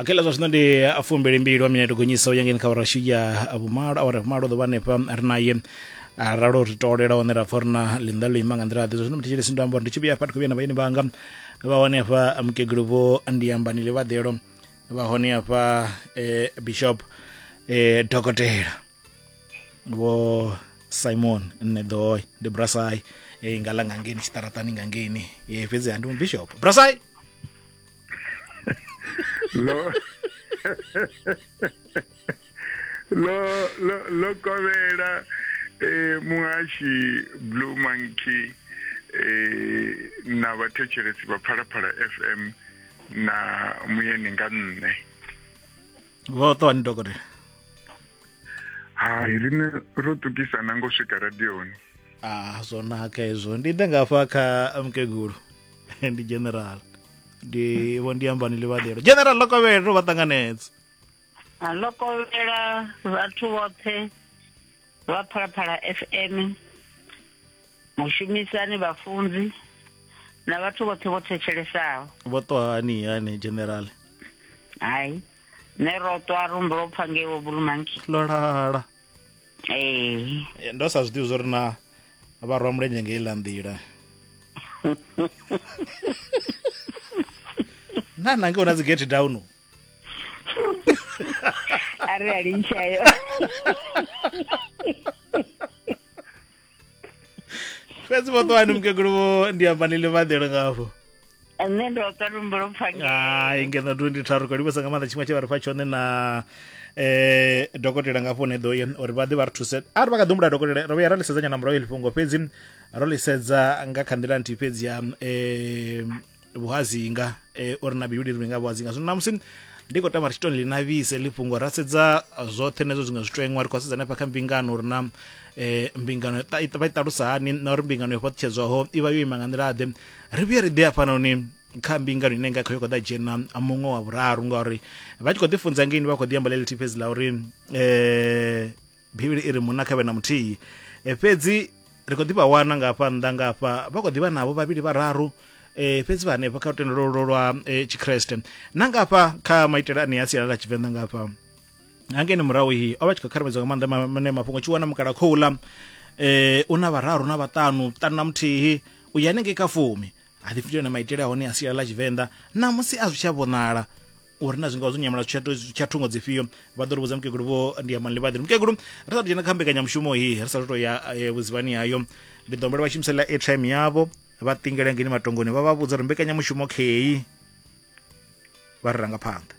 okay la zwa zwino ndi fumbili mbili wa minete gonyisa u ya ngeni kha vharashi ya vhumalo awara vhumalo ḓo vha hanefha ri naye a ralo ri tolela hone ra pfa ri na ḽinḓa ḽo ima nga nḓila ḓe zwa zwino muthetsheli si ndo amba uri ndi tshi vhuya hafha ndi khou vhuya na vhaeni vhanga vha hone hafha mukegulu vho ndiyambani ḽivhaḓelo vha hone hafha eh, bishop eh, dokotela vho simon nṋe ḓoy ndi brasai e nga la nga ngeni tshiṱaratani nga ngeni e fhedzi ha ndi mubishop brasai lo lo lo lo kovhela eh muhashi blue monkey eh na vhathetshelesi vha phalaphala fm na muyeni nga nṋe vho ṱuwani dokotela hai rine ro tukisa na ngo swika radioni ah zwo naka hezwo ndi ḓe ngafha kha mukegulu ndi general ndi vho ndi ambani livhalelo general lokovhele ro vha ṱanganedza lokovhela vhathu vhoṱhe vha phalaphala fm mushumisani vhafunzi na vhathu vhoṱhe vho thetshelesao vho ṱwa hani hani general hai nṋe ro ṱwa rumbo lwo pfa ngeiwo bulumanki ḽo lala ee eh, ndo sa zwi ḓivhi zwo ri na vha rwa mulenzhe nga iḽa nḓila na nange u na dzi gate down a re a lintšha yo fhedzi vhoṱoani mukegulu vho ndi amba ni ḽivhaḓelo ngafho nṋe ndo ka lumbo lwo pfanga hai ngeno 23 ko livhesa nga maanḓa tshiṅwe tshe vha ri fha tshone na eh dokotela nga fone do ye uri vha ḓe vha ri thuse a ri vha kha ḓumbula dokotela ro vhuya ra lisedzanya na murahu fhungo fhedzi ro lisedza nga kha nḓila nthihi fhedzi ya eh vhuhazinga eh, uri na bivhili ri nga vhuhazinga zwino namusi ndi khou tama ri tshi to ḽi navhise ḽi fhungo ra sedza zwoṱhe nezwo zwiṅwe zwitweṅwa ri khou sedza hanefha kha mbingano uri na eh, mbingano ta- i- vha i ṱalusa hani na uri mbingano yo fhaṱutshedzwaho i vha yo ima nga nḓila ḓe ri vhuye ri ḓe hafhanoni kha mbingano ine nga kha yo khou ḓa dzhena muṅwe wa vhuraru ngauri vha tshi khou ḓi funza ngeini vha khou ḓi amba ḽeḽithihi fhedzi ḽa uri um bivhili i ri munna kha vhe na muthihi e, fhedzi ri khou ḓi vha wana nga hafha nnḓa nga hafha vha khou ḓi vha navho vhavhili vhararu e, fhedzi vha hanefha kha lutendo lwo lwa e, tshikreste na nga hafha kha maitele ane a sialala tshivenḓa nga hafha hangeni murahu hi o vha tshi khou kharamedzwa nga maanḓa mane mafhungo tshi wana mukala khouḽa um e, u na vhararu na vhaṱanu ṱanu na muthihi u ya hanengei kha fumi ha ḓi fhindula na maitele a hone a sialala tshivenḓa namusi a zwi tsha vhonala uri na zwingaho zwo nyamela tsha thungo dzifhio vha ḓo ri vhudza mukegulu vho ndi ya manlivhaḓi mukegulu ri sa dzhena kha mbekanyamushumo hii ri sa to ya eh, vhuzivhani hayo ndi ḓo humbela vha shumisela airtime yavho vha tingela ngeni matongoni vha vha vhudza uri mbekanyamushumo kheyi vha ri ranga phanḓa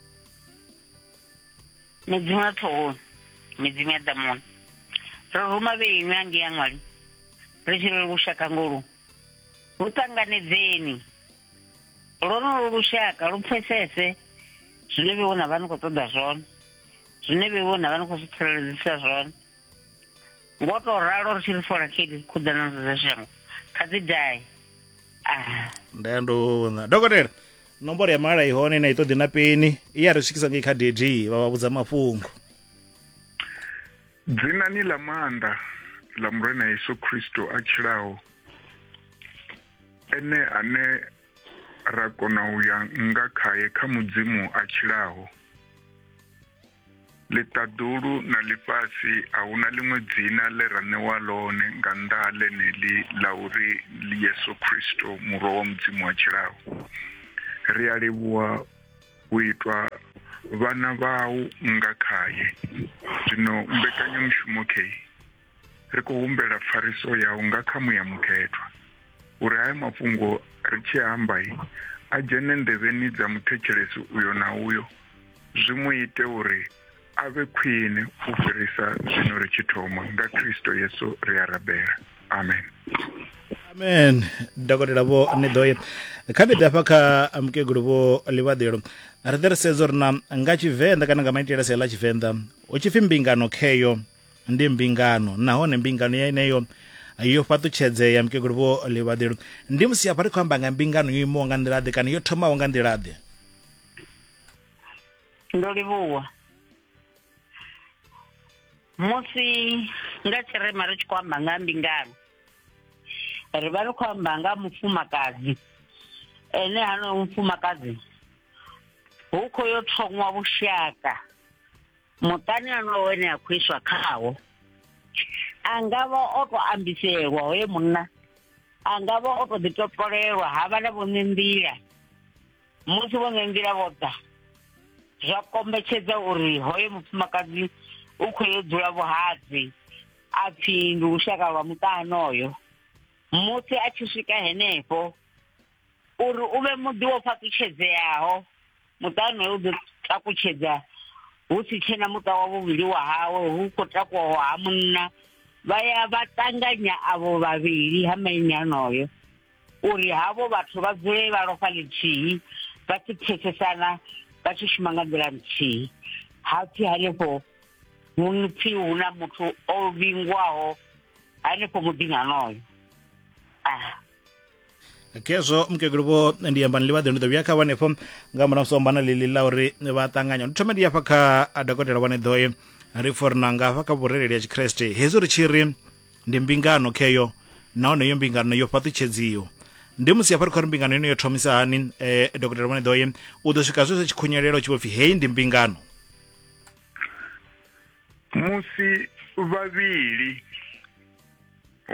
midzimu ya ṱhohoni midzimu ya ḓamuni ro ruma vheinu ange ya ṅwali ri tshirele lushaka ngolu hu ṱanganedzeni lwonolo lushaka lu pfesese zwine vhe vhona vha ni khou ṱoḓa zwone zwine vhe vhona vha ni khou zwi tsireledzisa zwone ngo tou ralo ri tshi ri fola kedi khuḓana dzo dza shango kha dzi dae ah. nda ya ndo vhona dokotela nomboro ya mala ihone na i ṱoḓi na peni i ya ri swikisa ngei kha dd vha vha vhudza mafhungo dzinani ḽa maanḓa ḽa murena yesu kristo a tshilaho Ene ane ra kona u ya nga khae kha Mudzimu a tshilaho. Ḽiṱaḓulu na ḽifhasi a hu na ḽiṅwe dzina ḽe ra ṋewa ḽone nga nnḓa ha ḽeneḽi ḽa uri ndi Yesu Kristo Murwa wa Mudzimu a tshilaho. Ri a livhuwa u itwa vhana vhau nga khae. Zwino mbekanyamushumo kheyi. ri khou humbela pfariso yau nga kha muya mukhethwa uri haya mafhungo ri tshi amba a dzhene nḓevheni dza muthetshelesi uyo na uyo zwi mu ite uri a vhe khwine u fhirisa zwino ri tshi thoma nga Kristo Yesu ri a rabela amen amen dokotela vho ni ḓoye kha ḓi dafha kha mukegulu vho ḽivhaḓelo ri ḓe ri sedza uri na nga tshivenḓa kana nga maitele a sia ḽa tshivenḓa hu tshi pfi mbingano kheyo ndi mbingano nahone mbingano yeneyo yo fhaṱutshedzea mukegulu vho livhaḓelo ndi musi hafha ri khou amba nga mbingano yo imaho nga nḓilaḓe kana yo thomaho nga nḓilaḓe ndo livhuwa musi nga tshirema ri tshi khou amba nga mbingano ri vha ri khou amba nga mufumakadzi ene hanoyo mufumakadzi hu khou yo thongwa vhushaka muṱani honoyo wene a khou iswa khawo a nga vha o to ambiselwa hoye munna a nga vha o to ḓi topolelwa ha vha na vhone nḓila musi vhone nḓila vho ḓa zwa kombetshedza uri hoyo mufumakadzi u khou yo dzula vhuhadzi a pfi ndi lushaka lwa muṱa honoyo musi a tshi swika henefho uri u vhe muḓi wo fhaṱutshedzeaho muṱa wonoyo u ḓo takutshedza hu si tshena muṱa wa vhuvhili wa hawe hu khou takuwaho ha munna vha ya vha ṱanganya avho vhavhili ha maine anoyo uri havho vhathu vha dzule vha lofha ḽithihi vha si pfesesana vha tshi shuma nga nḓila nthihi ha pfi hanefho hu pfi hu na muthu o vhingwaho hanefho muḓini anoyo ah. khezwo mukegulu vho ndi amba ni ḽivhaḓi ndi ḓo vhuya kha vhanefho nga murahu musi ombana ḽiḽi ḽa uri vha ṱanganya ndi thome ndi hafha kha dokotela vhane ḓoe ri for na nga hafha kha vhurereli ya tshikreste hezwi ri tshi ri ndi mbingano kheyo nahone iyo mbingano yo fhaṱutshedziwa ndi musi hafha ri khou ri mbingano ino yo thomisa hani um eh, dokotela vhone ḓoye u ḓo swika zwezwo tshikhunyelelo tshi vho pfi heyi ndi mbingano musi vhavhili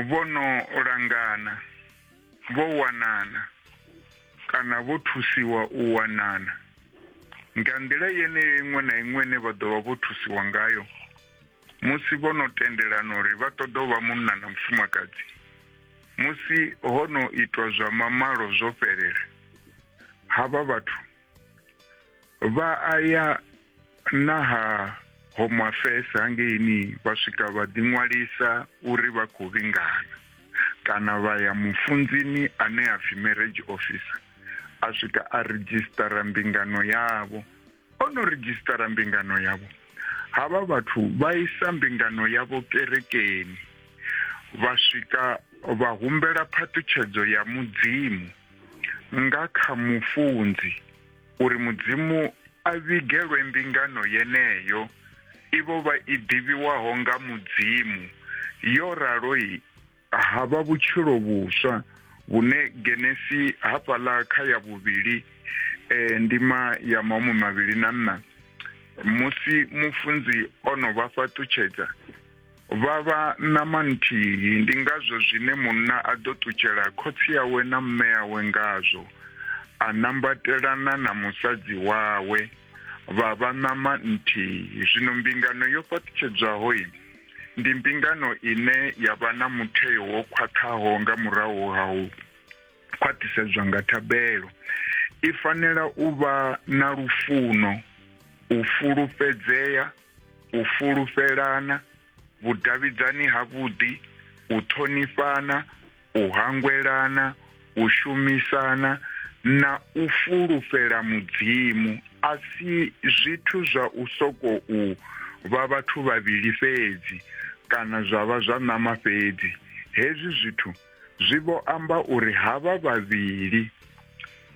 vho no langana, vho wanana kana vho thusiwa u wanana. Nga nḓila yeneyo iṅwe na iṅwe ine vha ḓo vha vho thusiwa ngayo musi vho no tendelana uri vha ṱoḓa u vha munna na mufumakadzi, musi ho no itwa zwa mamalo zwo fhelela, havha vhathu vha a ya na ha home affairs hangeini vha swika vha ḓiṅwalisa uri vha khou vhingana kana vha ya mufunzini ane a pfi marriage officer a swika a redzhisitara mbingano yavho o no redzhisitara mbingano yavho havha vhathu vha isa mbingano yavho kerekeni vha swika vha humbela phaṱhutshedzo ya mudzimu nga kha mufunzi uri Mudzimu a vhigelwe mbingano yeneyo i vho vha i ḓivhiwaho nga Mudzimu yo ralo ha vha vhutshilo vhuswa vhune Genesi hafhaḽa kha ya vhuvhili eh, ndima ya mahumi mavhili na nṋa musi mufunzi o no vha fhaṱutshedza Vha vha ṋama nthihi, ndi ngazwo zwine munna a ḓo ṱutshela khotsi awe na mme awe ngazwo, a nambatelana na musadzi wawe, vha vha ṋama nthihi. Zwino mbingano yo fhaṱutshedzwaho ndi mbingano ine ya vha na mutheo wo khwaṱhaho nga murahu ha u khwaṱhisedzwa nga thabelo. I fanela u vha na lufuno, u fulufhedzea, u fulufhelana, vhudavhidzani havhuḓi, u ṱhonifhana, u hangwelana, u shumisana, na u fulufhela Mudzimu, a si zwithu zwa u sokou vha vhathu vhavhili fhedzi kana zwa vha zwa ṋama fhedzi. Hezwi zwithu zwi vho amba uri havha vhavhili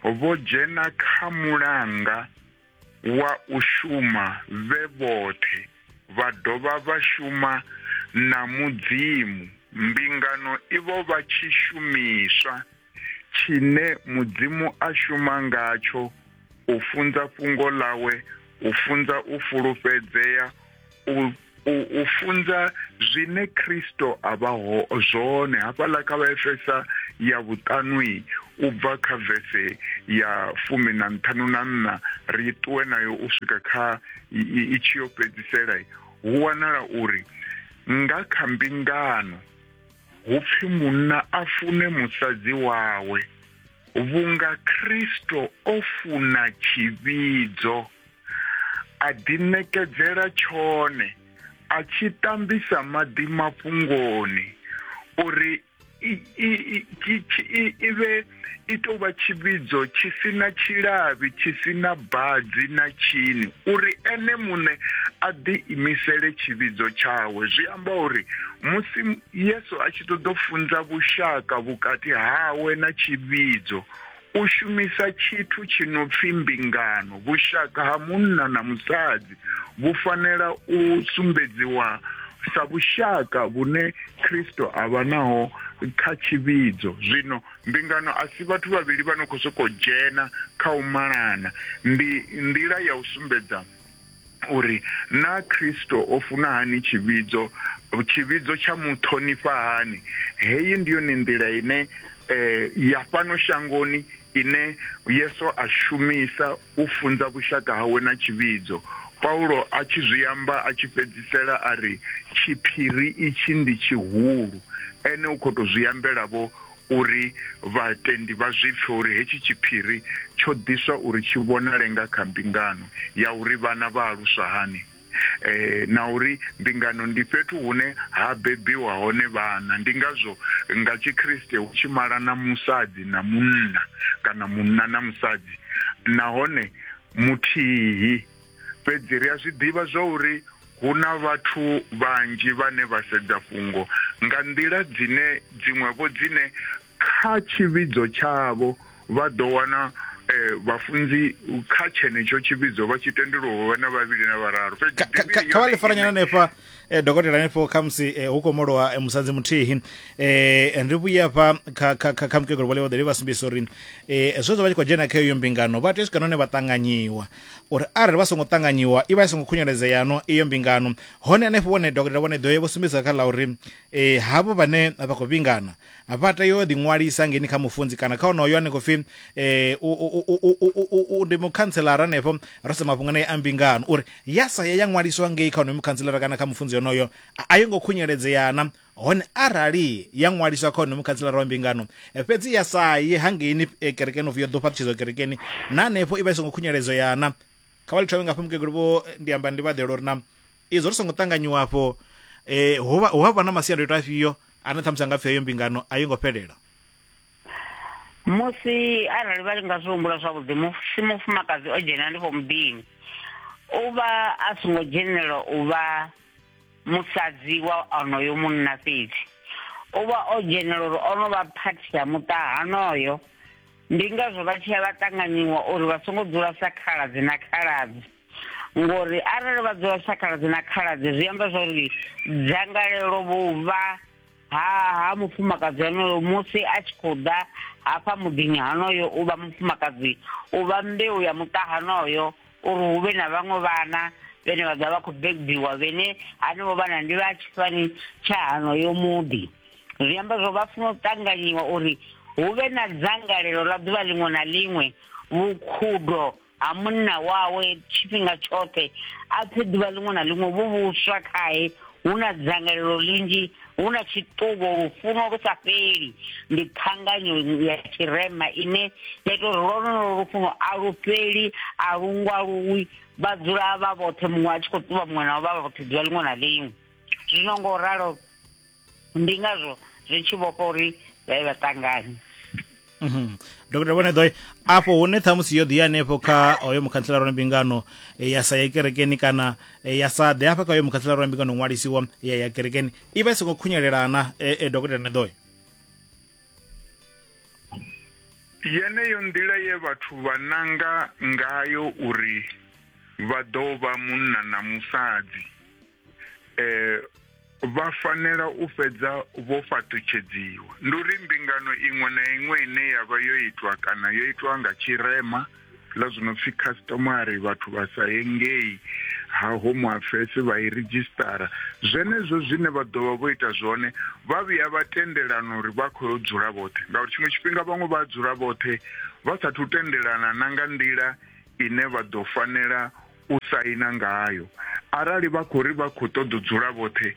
vho dzhena kha mulanga. wa u shuma vhe vhoṱhe vha dovha vha shuma na Mudzimu. Mbingano i vho vha tshishumiswa tshine Mudzimu a shuma ngatsho u funza fhungo ḽawe, u funza u fulufhedzea, u u, u funza zwine Kristo a vha ho zwone hafhaḽa kha vhaefesa ya vhuṱanwi u bva kha vese ya fumi na nṱhanu na nṋa ri ṱuwe nayo u swika kha i tshi yo fhedzisela hu wanala uri nga kha mbingano hu pfi munna a fune musadzi wawe vhunga Kristo o funa tshivhidzo a ḓiṋekedzela tshone a tshi tambisa maḓi mafhungoni uri i vhe i tou vha tshivhidzo tshi si na tshilavhi tshi si na badzi na tshini uri ene muṋe a ḓi imisele tshivhidzo tshawe zwi amba uri musi yesu a tshi ṱoḓa u funza vhushaka vhukati hawe na tshivhidzo U shumisa tshithu tshi no pfi mbingano, vhushaka ha munna na musadzi vhu fanela u sumbedziwa sa vhushaka vhune Kristo a vha naho kha tshivhidzo. Zwino, mbingano a si vhathu vhavhili vha no khou sokou dzhena kha u malana. Ndi nḓila ya u sumbedza uri naa Kristo o funa hani tshivhidzo, tshivhidzo tsha mu ṱhonifha hani. Heyi ndi yone nḓila ine eh, ya fhano shangoni ine Yesu a shumisa u funza vhushaka hawe na tshivhidzo. Paulo a tshi zwi amba a tshi fhedzisela a ri tshiphiri itshi ndi tshihulu, ene u khou tou zwi ambela vho uri vhatendi vha zwi pfe uri hetshi tshiphiri tsho ḓiswa uri tshi vhonale nga kha mbingano ya uri vhana vha aluswa hani na uri mbingano ndi fhethu hune ha bebiwa hone vhana. Ndi ngazwo nga Tshikriste hu tshi malana musadzi na munna kana munna na musadzi nahone muthihi. Fhedzi ri a zwi ḓivha zwa uri hu na vhathu vhanzhi vhane vha sedza fhungo nga nḓila dzine dziṅwe-vho dzine kha tshivhidzo tshavho vha ḓo wana vhafunzi kha tshenetsho tshivhidzo vha tshi tendelwa u vha na vhavhili na vhararu fhedzi Kha- kha- kha- kha vha ḽifaranyana hanefha eh, dokotela hanefho khamusi eh, hu khou molowa eh, musadzi muthihi eh, ri vhuye hafha kha- kha- kha kha mukegulu vhole vhaḓeli vha sumbisa uri eh, zwezwo vha tshi khou dzhena kha iyo mbingano vha tea u swika nahone vha ṱanganyiwa uri arali vha songo ṱanganyiwa i vha i songo khunyeledzea no iyo mbingano hone hanefho vhone dokotela vhone ḓo ye vho sumbedza kha ḽa uri e, havho vhane vha khou vhingana vha tea u ḓiṅwalisa ngeni kha mufunzi kana kha onoyo ane khou pfi um ndi mukhantselara hanefho ro sa mafhungo naye a mbingano uri ya sa ya ya ṅwaliswa ngei kha onoyo mukhantselara kana kha mufunzi onoyo a yo ngo khunyeledzeana Hone arali ya ṅwaliswa kha honomu khantsilara wa mbingano, fhedzi ya sa ye hangeini e, kerekeni upfi yo ḓo fhaṱutshedzwa kerekeni, na hanefho i vha i songo khunyeledzwa ya na. Kha vha ḽi thome ngafho mukegulu vho ndi amba ndi vhaḓela uri na izwo ri songo ṱanganyiwa afho e, hu vha hu vha na masiandoitwa afhio ane ṱhamusi a nga pfi heyo mbingano a yo ngo fhelela. Musi arali vha nga zwi humbula zwavhuḓi, musi mufumakadzi o dzhena hanefho muḓini, u vha a songo dzhenelelwa u vha musadzi wa onoyo munna fhedzi o vha o dzhenela uri o no vha phathi ya muṱa hanoyo ndi ngazwo vha tshi ya vha ṱanganyiwa uri vha songo dzula sa khaladzi na khaladzi ngori arali vha dzula sa khaladzi na khaladzi zwi amba zwa uri dzangalelo vhuvha ha ha mufumakadzi honoyo musi a tshi khou ḓa hafha muḓini honoyo u vha mufumakadzi u vha mbeu ya muṱa honoyo uri hu vhe na vhaṅwe vhana vhene vha ḓa vha khou bebiwa vhene hanevho vhana ndi vha tshifani tsha hanoyo muḓi zwi amba zwo vha funa u ṱanganyiwa uri hu vhe na dzangalelo ḽa ḓuvha ḽiṅwe na ḽiṅwe vhukhudo ha munna wawe tshifhinga tshoṱhe a pfe ḓuvha ḽiṅwe na ḽiṅwe vhu vhuswa khae hu na dzangalelo linzhi hu na tshiṱuvo lufuno lu sa fheli ndi ṱhanganyo ya tshirema ine ya ita uri lwonolo lufuno a lu fheli a lu ngwaluwi vha dzula vha vhoṱhe muṅwe a tshi khou ṱuvha muṅwe nao vha vha vhoṱhe ḓuvha ḽiṅwe na ḽiṅwe zwino ngo ralo ndi ngazwo zwi tshi vhofha uri vha ye vha ṱanganye mhm. dokotela vhone ḓoe afho hune ṱhamusi yo ḓi hanefho kha hoyo mukhantsela rona mbingano eh, ya sa ye kerekeni kana eh, ya sa ḓe hafha kha hoyo mukhantsela rona mbingano ṅwalisiwa ya ya kerekeni i vha i songo khunyelelana eh, e dokotela ne ḓoe yeneyo nḓila ye vhathu vha nanga ngayo uri vha ḓo vha munna na musadzi eh, vha fanela u fhedza vho fhaṱutshedziwa ndi uri mbingano iṅwe na iṅwe ine ya vha yo itwa kana yo itwa nga tshirema ḽa zwi no pfi customary vhathu vha sa ye ngei ha home affairs vha i ridzhisitara zwenezwo zwine vha ḓovha vho ita zwone vha vhuya vha tendelana uri vha khou yo dzula vhoṱhe ngauri tshiṅwe tshifhinga vhaṅwe vha dzula vhoṱhe vha sathu tendelana na nga nḓila ine vha ḓo fanela u saina ngayo. Arali vha khou ri vha khou ṱoḓa u dzula vhoṱhe,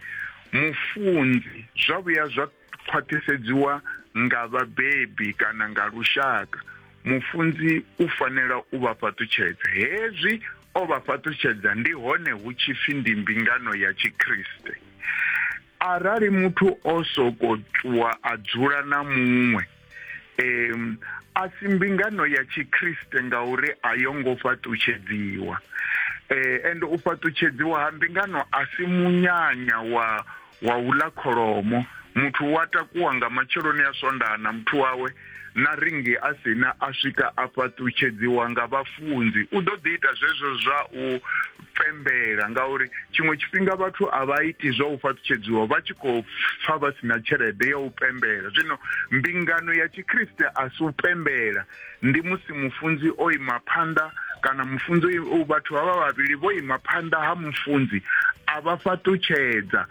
mufunzi, zwa vhuya zwa khwaṱhisedziwa nga vhabebi kana nga lushaka, mufunzi u fanela u vha fhaṱutshedza. Hezwi o vha fhaṱutshedza ndi hone hu tshi pfi ndi mbingano ya Tshikriste. Arali muthu o soko ṱuwa a dzula na muṅwe, um, a si mbingano ya tshikriste ngauri a yo ngo fhaṱutshedziwa. Eh, and u fhaṱutshedziwa ha mbingano a si munyanya wa wa u ḽa kholomo muthu wa takuwa nga matsheloni a swondaha na muthu wawe na ringi a sina a swika a fhaṱutshedziwa nga vhafunzi u ḓo ḓi ita zwezwo zwa u pembela ngauri tshiṅwe tshifhinga vhathu a vha iti zwa u fhaṱutshedziwa vha tshi khou pfa vha si na tshelede ya u pembela zwino mbingano ya tshikriste a si u pembela ndi musi mufunzi o ima phanḓa kana mufunzi vhathu vha vha vhavhili vho ima phanḓa ha mufunzi a vha fhaṱutshedza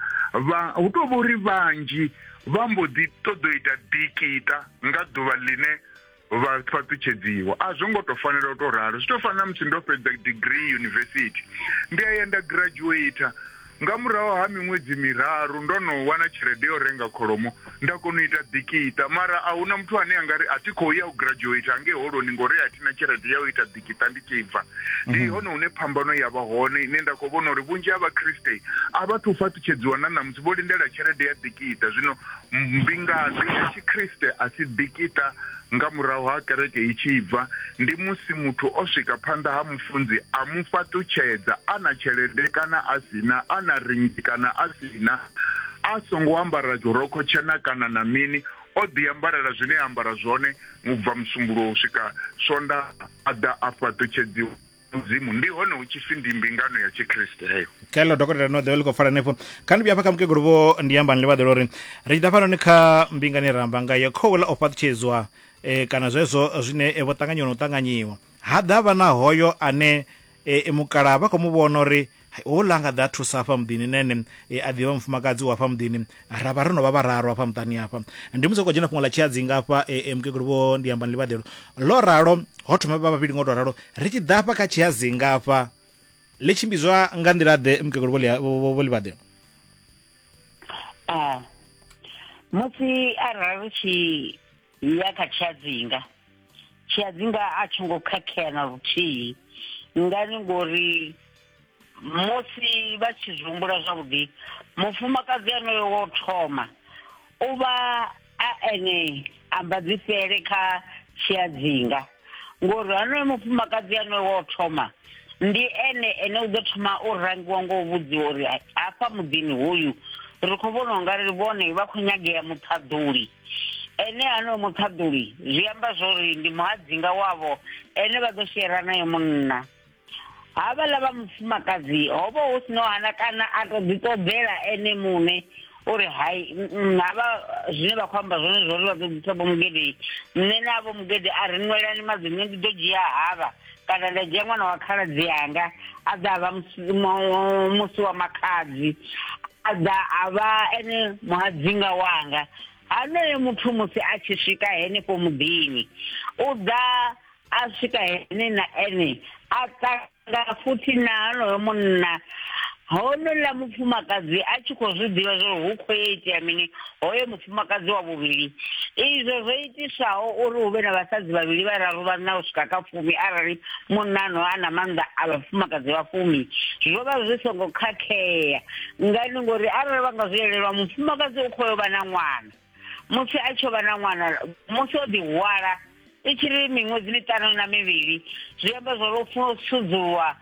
hu tou vha uri vhanzhi vha mbo ḓi ṱoḓo ita dikita nga ḓuvha ḽine vha fhaṱutshedziwa a zwo ngo tou fanela u tou ralo zwi tou fana na musi ndo fhedza degree yunivesithi ndi a ya nda graduator nga murahu ha miṅwedzi miraru ndo no wana tshelede yo renga kholomo nda kona u ita ḓikiṱa mara a huna muthu ane a nga ri a thi khou ya u graduate angei holoni ngori a thina tshelede ya u ita ḓikiṱa ndi tshi bva ndi mhm. hone hune phambano ya vha hone ine nda khou vhona uri vhunzhi ha vhakriste a vha thu fhaṱutshedziwa na ṋamusi vho lindela tshelede ya ḓikiṱa zwino Ndi ngazwi zwa Tshikriste a tshi ḓikita nga murahu ha kereke i tshi bva, ndi musi muthu o swika phanḓa ha mufunzi a mu fhaṱutshedza, a na tshelede kana a si na, a na ringi kana a si na, a songo ambara dzhorokho tshena kana na mini, o ḓiambarela zwine a ambara zwone u bva Musumbuluwo u swika Swondaha, a ḓa a fhaṱutshedziwa. mudzimu ndi hone hu tshi pfi ndi mbingano ya tshikriste heyo kelo dokotela no ḓivha ḽi khou pfala henefho kha ndi vhuya fha kha mukegulu vho ndi ambani ḽi vhaḓela uri ri tshi ḓa fhanoni kha mbingani ra amba nga ya khouḽa o fhaṱutshedzwa um kana zwezwo zwine eh, vho ṱanganyiwa na u ṱanganyiwa ha ḓa vha na hoyo ane eh, mukalaha vha khou mu vhona uri Houḽa nga ḓa thusa hafha muḓini na ene e a ḓivha mufumakadzi wa hafha muḓini ra vha ro no vha vhararu hafha muṱani hafha ndi musi khou dzhena fhungo ḽa tshiadzinga hafha e, e, mukegulu vho ndi amba ni ḽivhaḓelo ḽo ralo ho thoma vha vhavhili ngo tou ralo ri tshi ḓa hafha kha tshiadzinga hafha ḽi tshimbidzwa nga nḓila ḓe mukegulu vho ḽi- vho- vho- vho ḽivhaḓelo Ah. Musi arali ri tshi ya kha tshiadzinga tshiadzinga a tshi ngo khakhea na luthihi ngani ngori musi vha tshi zwi humbula zwavhuḓi mufumakadzi anoyo wo thoma u vha a ene ambadzifhele kha tshiadzinga ngori hanoyo mufumakadzi anoyo wo thoma ndi ene ene u ḓo thoma u rangiwa ngo u vhudziwa uri hafha muḓini hoyu ri khou vhona ungari vhone vha khou nyagea muṱhaḓuli ene ano muṱhaḓuli zwi amba zwori ndi muhadzinga wavho ene vha ḓo shera naye munna havhaḽa vha mufumakadzi ho vha hu si no hana kana a to ḓi ṱoḓela ene muṋe uri hai havha zwine vha khou amba zwone zwori vha ḓo ḓisa vho mugede nṋe na vho mugede a ri nwelani maḓini ndi ḓo dzhia havha kana nda dzhia ṅwana wa khaladzi yanga a ḓa a vha musi wa makhadzi a ḓa a vha ene muhadzinga wanga hanoyo muthu musi a tshi swika henefho muḓini u ḓa a swika hene na ene a ṱanga futhi na hanoyo munna honouḽa mufumakadzi a tshi khou zwi ḓivha zwo ri hu khou ya itea mini hoyo mufumakadzi wa vhuvhili izwo zwo itisaho uri hu vhe na vhasadzi vhavhili vhararu vhanna u swika kha fumi arali munnano a na maanḓa a vhafumakadzi vha fumi zwo vha zwi songo khakhea ngani ngori arali vha nga zwi elelwa mufumakadzi u khoyo vha na ṅwana musi a tshi vha na ṅwana musi o ḓihwala i tshi ri miṅwedzi miṱanu na mivhili zwi amba zwa uri funa u sudzulwa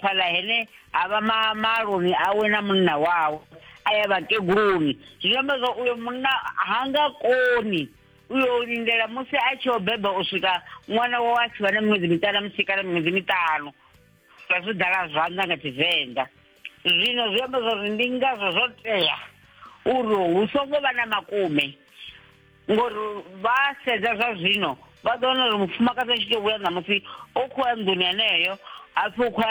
fhaḽa hene ha vha maloni awe na munna wawe a ya vhakeguluni zwi amba zwa uyo munna ha nga koni u yo lindela musi a tshi o beba u swika ṅwana wawe a tshi vha na miṅwedzi miṱanu na musi kana miṅwedzi miṱanu sa zwi dala zwanḓa nga tshivenḓa zwino zwi amba zwa uri ndi ngazwo zwo tea uri hu songo vha na makume ngori vha sedza zwa zwino vha ḓo wana uri mufumakadzi a tshi tou vhuya ṋamusi o khou ya nḓuni heneyo hapfi u khou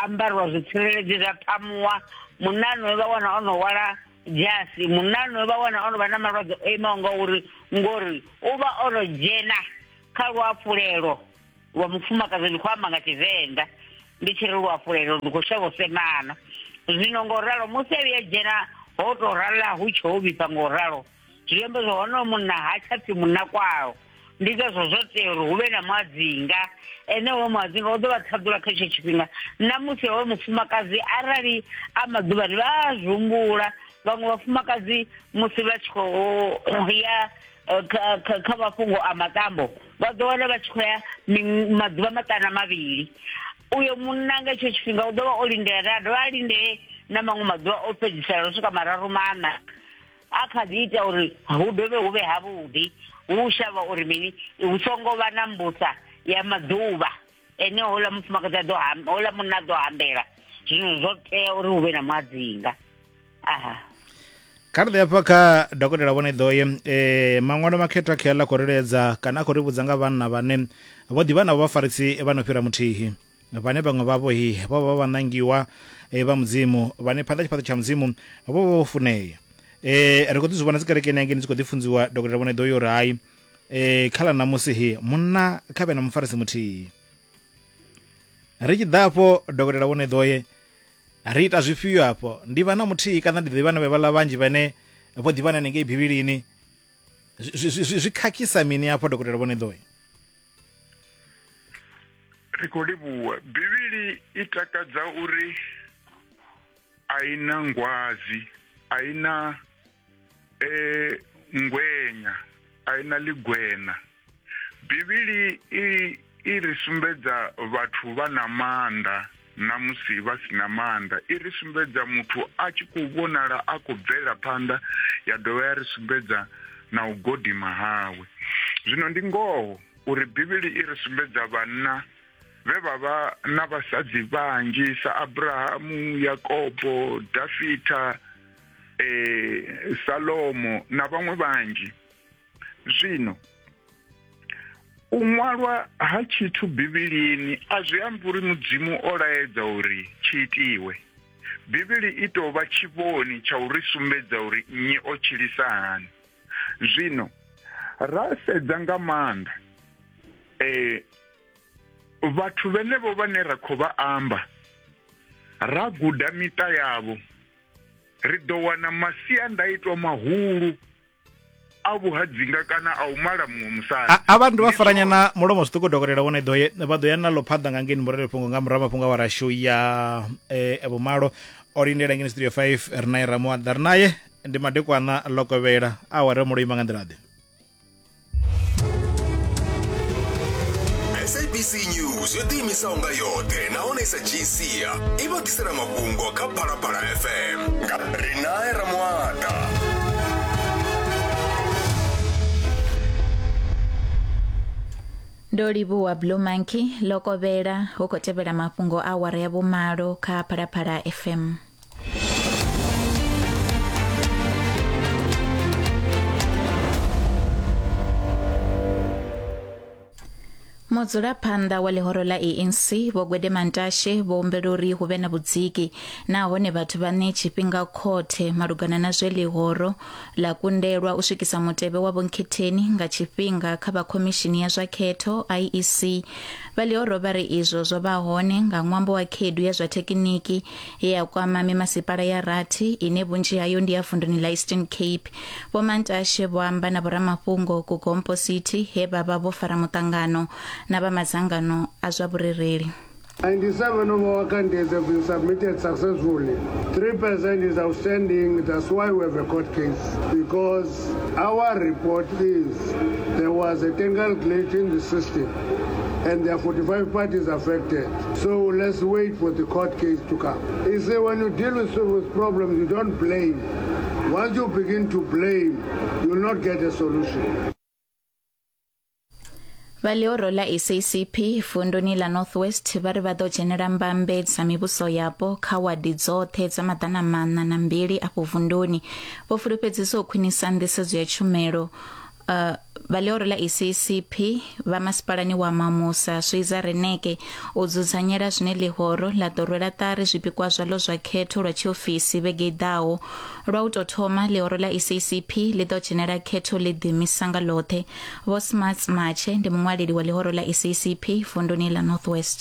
ambariwa zwitsireledzi zwa phamuwa munano vha wana o no wala dzhasi munano vha wana o no vha na malwadze o imaho nga uri ngori u vha o no dzhena kha luafhulelo wa mufumakadzi ndi khou amba nga tshivenḓa ndi tshi ri luafhulelo ndi khou shavha u semana zwino ngo ralo musi a vhuya dzhena ho to rala hu tsho ho vhifha ngo ralo zwi amba zwa hone munna ha tsha pfhi munna kwao ndi ngazwo zwo tea uri hu vhe na muadzinga ene wo muadzinga u ḓo vha ṱhaḓula kha itsho tshifhinga na musi hoyo mufumakadzi arali a maḓuvhani vha a zwi humbula vhaṅwe vhafumakadzi musi vha tshi khou ya eh, kha kha kha mafhungo a matambo vha ḓo wana vha tshi khou ya maḓuvha maṱana mavhili uyo munna nga hetsho tshifhinga u ḓo vha o lindela a dovha a lindee na maṅwe maḓuvha o fhedzisela u swika mararu maṋa a kha ḓi ita uri hu dovhe hu vhe havhuḓi hu shavha uri mini hu songo vha na mbusa ya maḓuvha ene houḽa mufumakadzi a ḓo houḽa munna a ḓo hambela zwino zwo tea uri hu vhe na muadzinga aha kha ri ḓe afha kha dokotela vhone ḓoye um eh, maṅwalo makhetho a khela khou riledza kana a khou ri vhudza nga vhanna vhane vho ḓivha navho vhafarisi vha no fhira muthihi vhane vhaṅwe vhavho hi vho vha vha ṋangiwa eh, vha mudzimu vhane phanḓa tshifhaṱo tsha mudzimu vho vha vho funea um ri khou ḓi zwi vhona dzikerekeni hangei ni tshi khou ḓi funziwa dokotela vhone ḓoyo uri hai e khala na musi he munna kha vhe na mufarisi muthihi ri tshi ḓa afho dokotela vhone ḓoye ri ita zwifhio afho ndi vha na muthihi kana ndi ḓivha na vhevhala vhanzhi vhane vho ḓivhana nengei bivhilini zwi khakhisa mini afho dokotela vhone ḓoye ri khou livhuwa bivhili i takadza uri a i na ngwazi a i na eh ngwenya a ina ligwena bivhili i i ri sumbedza vhathu vha na maanḓa na musi vha si na maanḓa i ri sumbedza muthu a tshi khou vhonala a khou bvela phanḓa ya dovha ya ri sumbedza na u godima hawe zwino ndi ngoho uri bivhili i ri sumbedza vhanna vhe vha vha na vhasadzi vhanzhi sa abrahamu yakobo dafita eh, salomo na vhaṅwe vhanzhi zwino u ṅwalwa ha tshithu bivhilini a zwi ambi uri mudzimu o laedza uri tshi itiwe bivhili i tou vha tshivhoni tsha uri sumbedza uri nnyi o tshilisa hani zwino ra sedza nga maanḓa eh vhathu vhenevho vhane ra khou vha amba ra guda miṱa yavho ri ḓo wana masiandaitwa mahulu a vhuhadzinga kana a u mala muṅwe musadi a vha ndi vha faranya na mulomo zwiṱuku dokotela wone ḓo vha ḓo ya na ḽo phaḓa nga ngeni murele fhungo nga murahu mafhungo wa rashu ya eh, e vhumalo o lindela ngeni studio 5 ri naye ramuaḓa ri naye ndi madekwana ḽo kovhela aware mulo ima nga nḓila ḓe sabc news yo ḓiimisaho nga yoṱhe nahone i sa dzhii sia i vha ḓisela mafhungo kha phalaphala fm nga rinae ramwata ndo livhuwa blue monkey lokovhela hu khou tevhela mafhungo a awara ya vhumalo kha phalaphala fm mudzulaphanḓa wa ḽihoro ḽa anc vho gwede mantashe vho humbela uri hu vhe na vhudziki nahone vhathu vha ṋee tshifhinga khothe malugana na zwe ḽihoro ḽa kundelwa u swikisa mutevhe wa vhonkhetheni nga tshifhinga kha vha khomishini ya zwa khetho iec vha ḽihoro vha ri izwo zwo vha hone nga ṅwambo wa khaedu ya zwa thekiniki ye ya kwama mimasipala ya rathi ine vhunzhi hayo ndi ya vunduni ḽa eastern cape vho mantashe vho amba na vhoramafhungo ku gompo city he vha vha vho fara muṱangano na vha madzangano a zwa vhurereli 97 of our candidates have been submitted successfully. 3% is outstanding. That's why we have a court case. Because our report is there was a technical glitch in the system and there are 45 parties affected. So let's wait for the court case to come. He said, when you deal with, with problems, you don't blame. Once you begin to blame, you will not get a solution. vha ḽihoro ḽa sacp vunduni ḽa north west vha ri vha ḓo dzhenela mbambe dza mivhuso yapo kha wadi dzoṱhe dza maḓana maṋa na mbili afho vunduni vho fulufhedzisa u khwinisa nḓisedzo ya tshumelo Uh, vha ḽioro ḽa ECCP vha masipalani wa Mamusa Swiza Reneke u dzudzanyela zwine ḽihoro ḽa ḓo rwela ṱari zwipikwa zwaḽo zwa khetho lwa tshiofisi vhege i ḓaho lwa u tou thoma ḽihoro ḽa ECCP ḽi ḓo dzhenela khetho ḽi ḓimisa nga ḽoṱhe Vho Smarts Matshe ndi muṅwaleli wa ḽihoro ḽa ECCP vunduni ḽa North West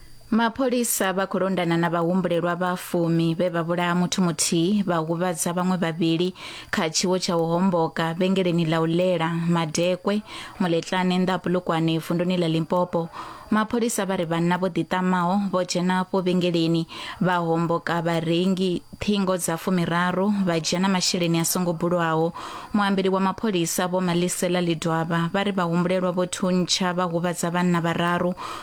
Mapholisa vha khou londana na vhahumbulelwa vha fumi vhe vha vhulaha muthu muthihi vha huvhadza vhaṅwe vhavhili kha tshiwo tsha u homboka vhengeleni ḽa u ḽela madekwe muletlane nnḓa ha Polokwane vunduni ḽa Limpopo. Mapholisa vha ri vhanna vho ḓiṱamaho vho dzhena afho vhengeleni vha homboka vharengi ṱhingo dza fumiraru vha dzhia na masheleni a songo bulwaho. Muambeli wa mapholisa Vho Malisela Lidwaba vha ri vhahumbulelwa vho thuntsha vha huvhadza vhanna vhararu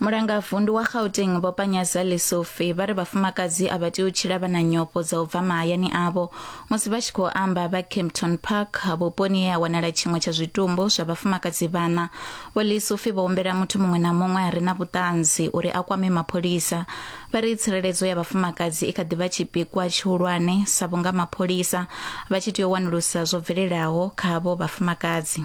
mulangavundu wa gauteng vho panyaza lesofi vha ri vhafumakadzi a vha tea u tshila vha na nyofho dza u bva mahayani avho musi vha tshi khou amba vha campton park vhuponi he ha wanala tshiṅwe tsha zwitumbu zwa vhafumakadzi vhana vho lesofi vho humbela muthu muṅwe na muṅwe a re na vhuṱanzi uri a kwame mapholisa vha ri tsireledzo ya vhafumakadzi i kha ḓi vha tshipikwa tshihulwane sa vhunga mapholisa vha tshi tea u wanulusa zwo bvelelaho kha avho vhafumakadzi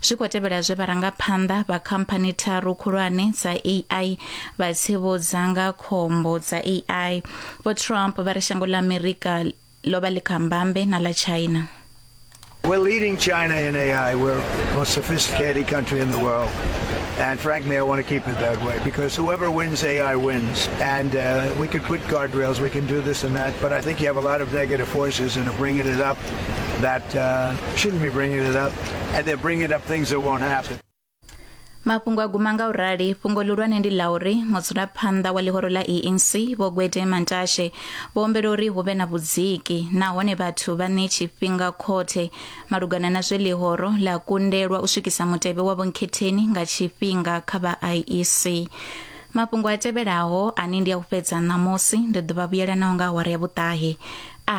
Zwi khou tevhela zwe vharangaphanḓa vha khamphani tharu khulwane dza AI vha tsivhudza nga khombo dza AI. Vho Trump vha ri shango ḽa Amerika ḽo vha ḽi kha mbambe na ḽa China. We're leading China in AI. We're the most sophisticated country in the world. And frankly, I want to keep it that way because whoever wins AI wins. And uh, we could put guardrails, we can do this and that, but I think you have a lot of negative forces and are bringing it up that uh, shouldn't be bringing it up. and they're bringing up things that won't happen. mafhungo a guma nga u rali fhungo ḽihulwane ndi ḽa uri mudzulaphanḓa wa ḽihoro ḽa enc vho gwede mantashe vho ombela uri hu vhe na vhudziki nahone vhathu vha ṋe tshifhinga khothe malugana na zwe ḽihoro ḽa kundelwa u swikisa mutevhe wa vhonkhetheni nga tshifhinga kha vha iec mafhungo a tevhelaho ane ndi a u fhedza ṋamusi ndi ḓo vha vhuyela naho nga awara ya vhuṱahe a